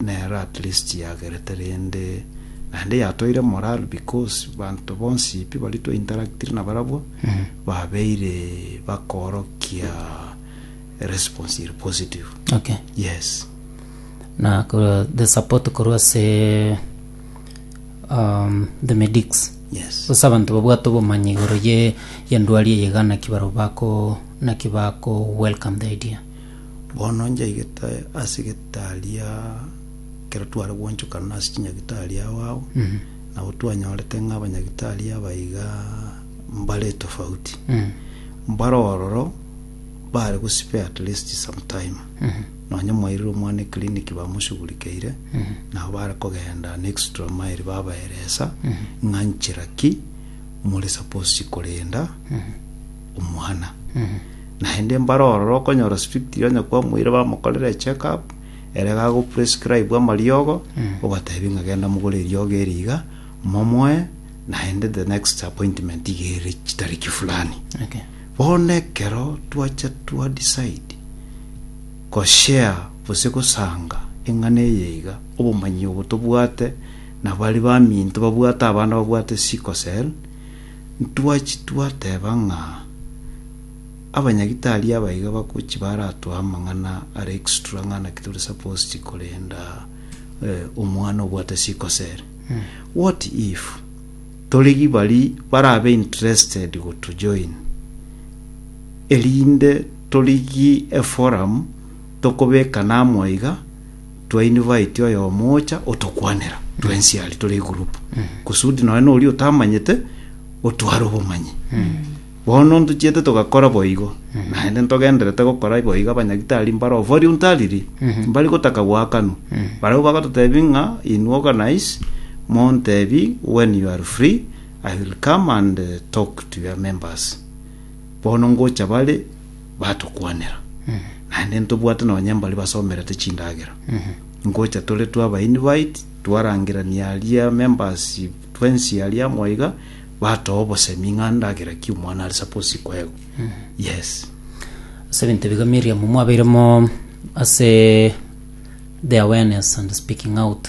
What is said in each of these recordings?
Nero at least yagerete rende naende yatoire morale because banto bonsi pi baria twa interactire nabarabwo babeire bakorokia response ere positive Okay. yes Na korwa the support korwa ase um, the medics. yes Sasa abantu babwate obomanyi igoro ye yendwari eye gana ki baro bako naki bako welcome the idea. Bono njaigete ase getaria ekero tware gwanchokana ase chinyagitari ao ao, nabo twanyorete ng'a abanyagitari aba iga mbare tofauti. Mbare ororo bare gosibea at least some time. Nonye mwairire omwana eclinic bamoshugurikeire, nabo bare kogenda an extra mile babaeresa ng'a nchera ki more suppose korenda, omwana. Naende mbare ororo okonyora strict onye kwamoire bamokorera check up ere gago prescribe amariogo obatebia ng'a genda mogore eriogo eri iga momoe naende the next appointment iga ere chitariki fulani Okay. bono ekero twacha twa decide goshare gose gosanga eng'ana eye iga obomanyi obo tobwate nabari baminto babwate abana babwate sickle cell Ntwachie twateba ng'a abanyagitari aba iga bagochia baratoe amang'ana are extra ng'a naki tore supposed korenda eh, omwana obwate sikosere. What if torigi bari barabe interested gotujoin erinde torigie eforum tokobekana amo iga twa invite oyomo ocha otokwanera twensi aria tore egroup kusudi nonya na oria otamanyete otware obomanyi bono ntochiete togakora boigo naende ntogenderete gokora boigo abanyagitari mbare ovori ontariri mbari gotaka goakanwa barabwo bagototebi ng'a inwe organize montebi when you are free i will come and eh, talk to your members bono ngocha bare Batokwanera, naende ntobwate nonya mbaria basomerete chindagera. Ngocha tore twa ba invite, twarangerania aria members twensi aria amo iga, batoa obosemi ng'a ndagera ki omwana are suppose koegwa. Yes. Ase ebinto ebiga Miriam mwabeiremo ase the awareness and speaking out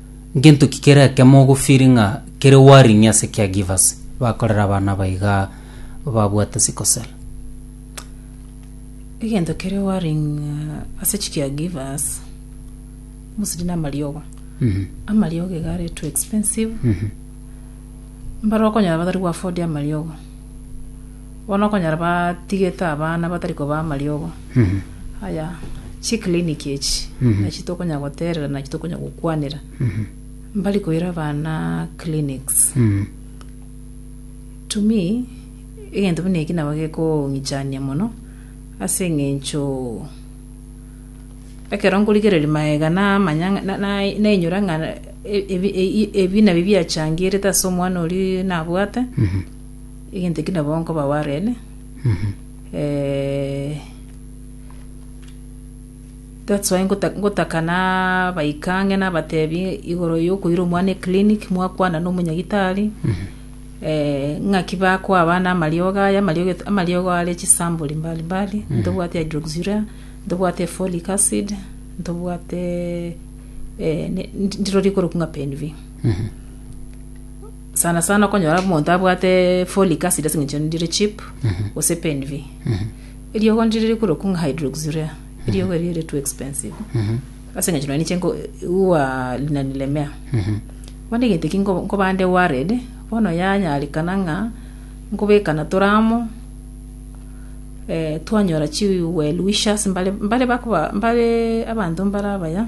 Ngento ki kere ekemo ogofili ng'a kere warenie ase caregivers bakorera abana aba iga babwate sickle cell? egento kere worrying uh, ase chicaregivers mostly na amariogo Mhm. amariogo iga are too expensive Mhm. mbare okonyora batari gwafodia amariogo Bono okonyora batigete abana batari kobaa amariogo aya chiclinic echi nachi tokonyara goterera nachi tokonyara gokwanera mbari koira abana clinics to me egento buna eki nabo gekong'ichania mono ase eng'encho ekero nkorigereria maega na amanyang'a na- na- nainyora ng'a ebi- ebi- ebi nabio biachangerete ase omwana oria nabwate. Egento eki nabo nkoba Warren, eh, that's why ngota- ngotaka nabaika ang'e nabatebi igoro yokoira omwana eclinic mwakwana na omonyagitari eh, ng'aki bakoa abana amariogo aya amariogo et- amariogo are chisambori mbali mbali ntobwate hydroxyurea ntobwate folic acid ntobwate eh, ne- ndi- ndirori korokwa ng'a penv Sana sana okonyora omonto abwate folic acid ase eng'encho ndire chip gose PNV. Eriogo ndire rikoruokwa ng'a hydroxyurea. Eriogo erio ere too expensive. Ase eng'encho nonye ninche nko- huwa linanilemea. Bono egento eki nko- nkoba nde worried, bono yanyarekana ng'a nkobekana tore amo, eh, twanyora chi well wishers mbare mbare bakoba mbare abanto mbare abaya,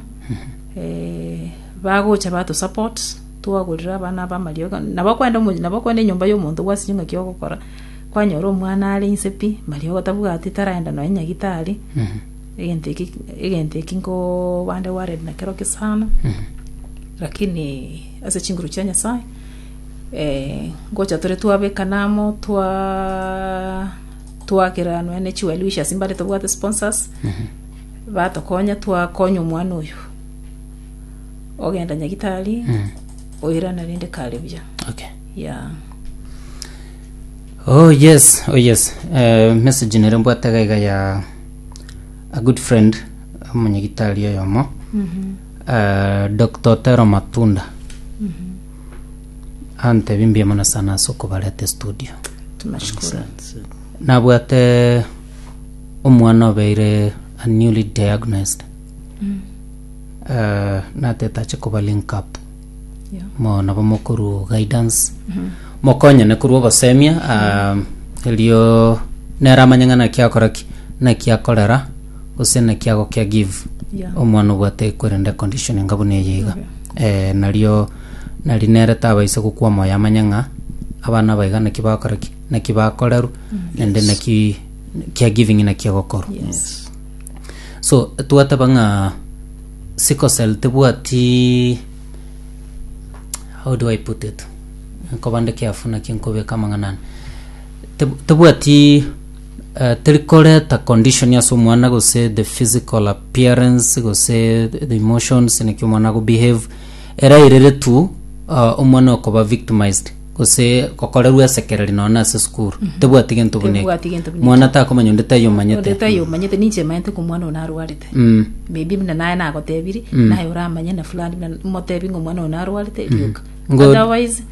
eh, bagocha batusupport. Twagorire abana aba amariogi, nabo okwenda omochie, nabo okwenda enyomba y'omonto gwasinywe ng'aki ogokora, kwanyora omwana are inse pi, mariogo tabwati, taraenda nonya nyagitari, egento eki, egento eki nkobande gwarire nakero ki sana, lakini ase chinguru chia Nyasaye, ngocha tore twabekana amo, twa twagera nonya ne chi well wishers mbare tobwate sponsors, batokonya twakonya omwana oyo. ogenda nyagitari Mm. oirana rende kare buya Okay. ya Oh yes, oh yes. Eh, message nere mbwate iga iga ya a good friend omonyagitari oyomo eh, Dr. Otero Matunda antebi mbuya mono sana ase okobarete studio tunashukuru nabwate omwana obeire a newly diagnosed Eh, natetache koba link up mo nabo mokorwa guidance mokonyene korwa ogosemia ah, erio nere amanye ng'a naki akora ki naki akorera gose naki agokea give Yeah. omwana obwate korende condition enga buna eye iga eh, nario nari nere tabaise gokwa moyo amanye ng'a abana aba iga naki bakora ki naki bakorerwa naende naki care giving naki egokorwa Yes. so twateba ng'a sikosel tebwati how do i put it nkobande kiafu naki nkobeka amang'ana ane Teb- tebwati eh, teri koreta condition ase omwana gose the physical appearance gose the emotions naki omwana ago behave era erere tu ah, omwana okoba victimized gose gokorerwa esekereri nonya na ase esukuru tebwati gento buna eke. Tebwati gento buna mwana takomanya onde tayomanyete onde tayomanyete ninche emanyete ng'a omwana oyo narwarete Mm. maybe buna naye nagotebiri naye oramanye na fulani buna motebi ng'a omwana oyo narwarete rioka Ngo- otherwise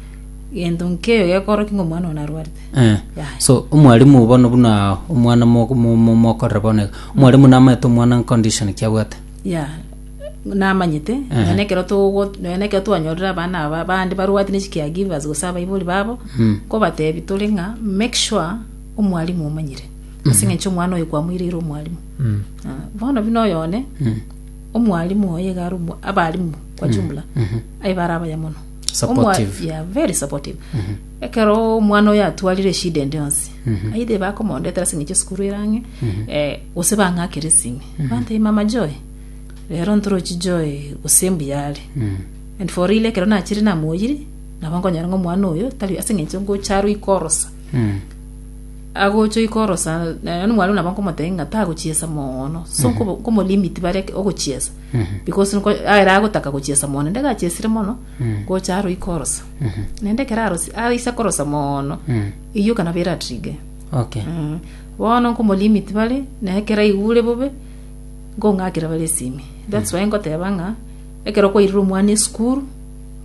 gento nkeiyo gekorokia ng'a omwana oyo narwarete Eh. Yeah. so omwalimu bono buna omwana mo- mo- mo- mokorera bono iga omwalimu namaete omwana condition ki abwate Yea, namanyete, Ehe. nonya nekero togo nonya nekero twanyorire abana aba abande barwati ne chicaregivers gose abaibori babo Mm. kobatebi tore ng'a make sure omwalimu omanyire ase ng'encho omwana oyo kwamoireire omwalimu Mm. Ah, bono buna oyo one Mm. omwalimu oye iga are omo- abarimu kwa jumla aye bare abaya mono Omwa- Supportive. yeah, very supportive Ekero omwana oyo atwarire eshida ende yonsi, aidha ebakomondetera ase eng'encho esukuru ere ang'e, eh, gose bang'akere ase ime, bantebie mama Joy, rero ntorochi Joy gose mbuya are. And for real ekero nachire namoyiri, nabo nkonyora ng'a omwana oyo tari ase eng'encho ngocha are oikorosa, agocha oikorosa, na- nonye omwalimu nabo nkomotebia ng'a tagochiesa mono, so nkobo- nkomolimit bare ogochiesa, because nko- ere agotaka gochiesa mono, naende gachesire mono. gocha aro ikorosa naende ekero arosi aise korosa mono eyio yoka nabo eratrige Okay. Mm. bono nkomolimit bare na ekero aigure bobe nkong'akera bare esimi thats why nkoteba ng'a ekero kwairire omwana esukuru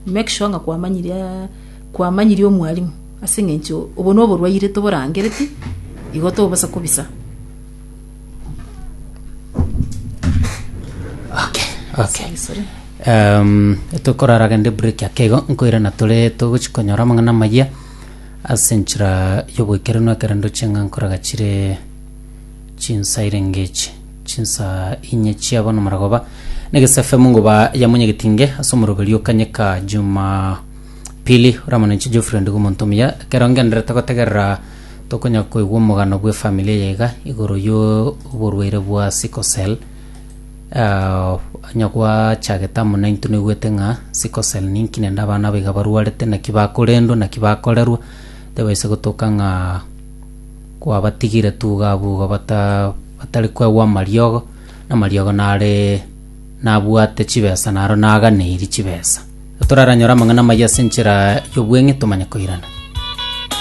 make sure ng'a kwamanyirie ah, kwamanyirie omwalimu ase eng'encho obo noborwaire toborangereti igo tobasa kobisa Okay, okay. Um, tokorara gende break ya kego nkoira na tore togochi konyora amang'ana amayia ase enchera y'oboikeranu ekero ndoche ng'a nkoraga chire chinsa irengechi chinsa inye chiabo na maragoba negesefe mungoba ya munyegetinge ase omoroberi okanyeka juma pili oramonenche geoffrey ndigo omonto omuya ekero ngenderete gotegerera tokonyara koigwa omogano bw'efamiri eye iga igoro y'oborwaire bwa sickle cell. Ah, onye gwachagete amo naintwe naigwete ng'a sickle cell ninki naende abana aba iga barwarete naki bakorendwa naki bakorerwa, tebaisa gotoka ng'a kwabatigire tu iga abwo iga bata batari koegwa amariogo, amariogo nare nabwate chibesa naro naganeiri chibesa. Toraranyore amang'ana amayia ase enchera y'obweng'e tomanye koirana.